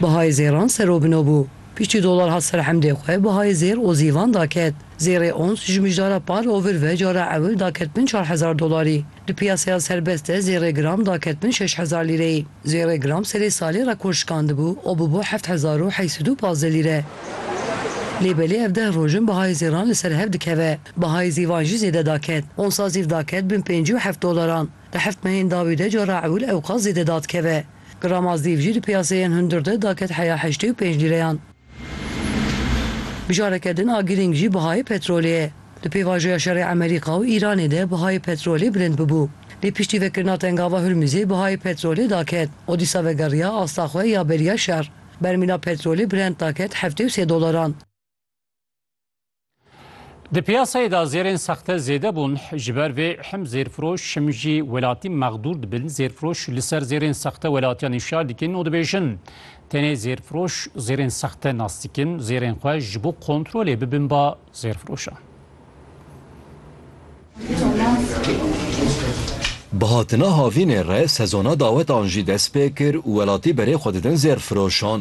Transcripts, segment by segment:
Bihayê zêran serobino bû. Piştî dolar hat ser hemdê xwe bihayê zêr û zîvan daket. Zêrê ons ji mijdara par û vir ve cara ewil daket bin çar hezar dolarî. Di piyaseya serbest de zêrê gram daket bin şeş hezar lîreyî. Zêrê gram serê salê rekor şikandibû û bûbû heft hezar û heşt sed û pazdeh lîre. Lê belê ev deh roj in bihayê zêran li ser hev dikeve. Bihayê zîvan jî zêde daket. Onsa zîv daket bin pêncî û heft dolaran. Di heftmehên dawî de cara ewil ewqas zêde da dikeve. Grama zîv jî di piyaseyên hundir de daket heya heştê û pênc lîreyan. Bi careke din a girîng jî bihayê petrolê ye. Di pêvajoya şerê Emerîka û Îranê de bihayê petrolê bilind bibû. Lê piştî vekirina Tengava Hurmizê bihayê petrolê daket û dîsa vegeriya asta xwe ya beriya şer. Bermîla petrolê brent daket heftê û sê dolaran. Di piyasayê de zêrên sexte zêde bûn. Ji ber vê him zêrfiroş him jî welatî mexdûr dibin. Zêrfiroş li ser zêrên sexte welatiyan îşar dikin û dibêjin tenê zêrfiroş zêrên sexte nas dikin. Zêrên xwe ji bo kontrolê bibin ba zêrfiroşan. Bi hatina havînê re sezona dawetan jî dest pê kir û welatî berê xwe didin zêrfiroşan.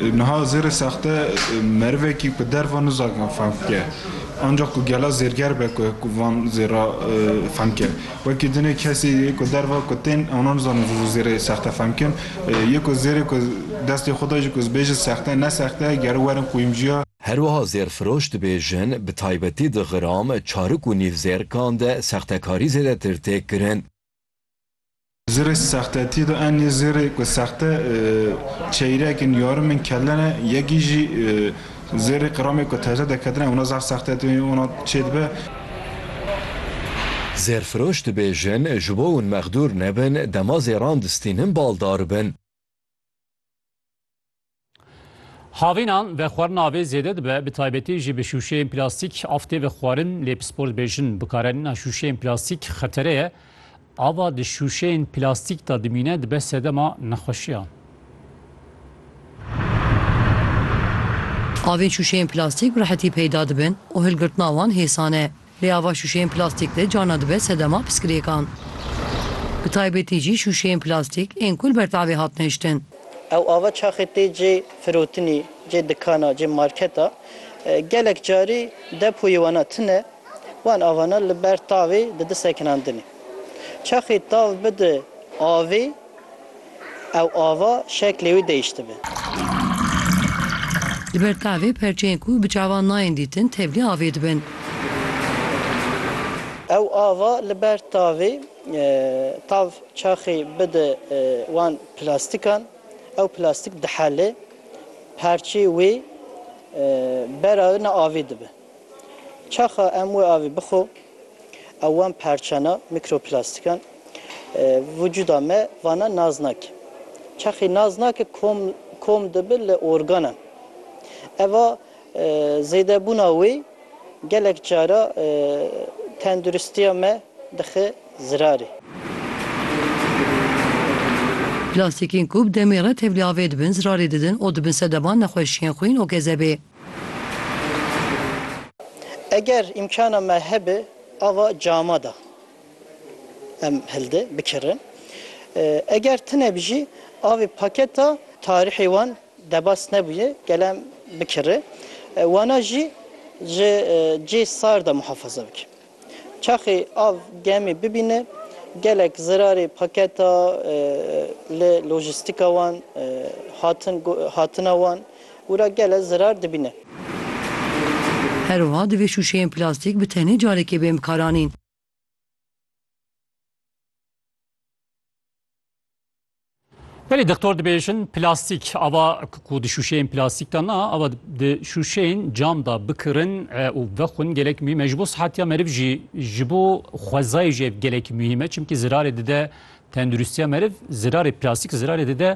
Niha zêrê sexte merivekî ku derva nizak van fehm bike. Ancax ku gela zêrger be ku ku van zêra fehm bike. Wekî dinê kesî yê ku derva ku tên ewna nizanin zû zû zêrê sexte fehm bikin. Yê ku zêrê ku destê xwe de jî ku zibêjin sexte ne sexte gere werin qûyimciya. Herwiha zêrfiroş dibêjin bi taybetî di gram, çarik û nîv zêrkan de sextekarî zêdetir tê kirin. Zirê sextetî de en nê zirê ku sexte çeyrek in, yarim in, kelle ne. Yekî jî zirê qiramê ku teze de ketine wina zaf sexte tê wina çê dibe. Zêrfiroş dibêjin ji bo win mexdûr nebin dema zêran distînin bal daribin. Havînan vexwarina avê zêde dibe bi taybetî jî bi şûşeyên plastîk av tê vexwarin lê pispor dibêjin bikaranîna şûşeyên plastîk xetere ye. Ava di şûşeyên plastîk de dimîne dibe sedema nexweşiyan. Avên şûşeyên plastîk bi rehetî peyda dibin û hilgirtina wan hêsan e. Lê ava şûşeyên plastîk de carna dibe sedema piskirêkan. Bi taybetî jî şûşeyên plastîk ên ku li ber tavê hatine hiştin. Ew ava çaxê tê cê firotinî, cê dikana, cê marketa. Gelek carî depoyê wana tune, wan avana li ber tavê didi sekinandinê. Çaxê tav bidi avê. Ew ava şeklê wî deyiştibe. Li ber tavê perçeyên ku bi çavan nayên dîtin tevlî avê dibin. Ew ava li ber tavê tav çaxê bide wan plastikan, ew plastik dihele, perçê wê bera ne avê dibe. Çaxa em wê avê bixwe ew wan parçana, mîkroplastikan vücuda me vana nas nake. Çaxê nas nake kom kom dibe li organan. Eva zêdebûna wê gelek cara tenduristiya me dixe zirarê. Plastikên ku bi demê re tevlî avê dibin zirarê didin û dibin sedema nexweşiyên xwîn û gezebê. Eger îmkana me hebe ava cama de em hilde bikirin. Eger tune bi jî avê paketa tarîhê wan debas nebûye gel em bikiri. Wana jî ji cê sar de muhafaza bike. Çaxê av gemê bibîne gelek zirarê paketa li lojîstîka wan hatin hatina wan û ra gele zirar dibîne. Her wiha divê şûşeyên plastîk bi tenê carekê bên bikaranîn. Belê doktor dibêjin plastîk ava ku di şûşeyên plastîk de na ava di şûşeyên cam da bikirin û vexwin gelek mî me ji bo sihetiya meriv jî ji bo xwezayê jî ev gelek mî me çimkî zirarê dide tenduristiya meriv zirarê plastîk zirarê dide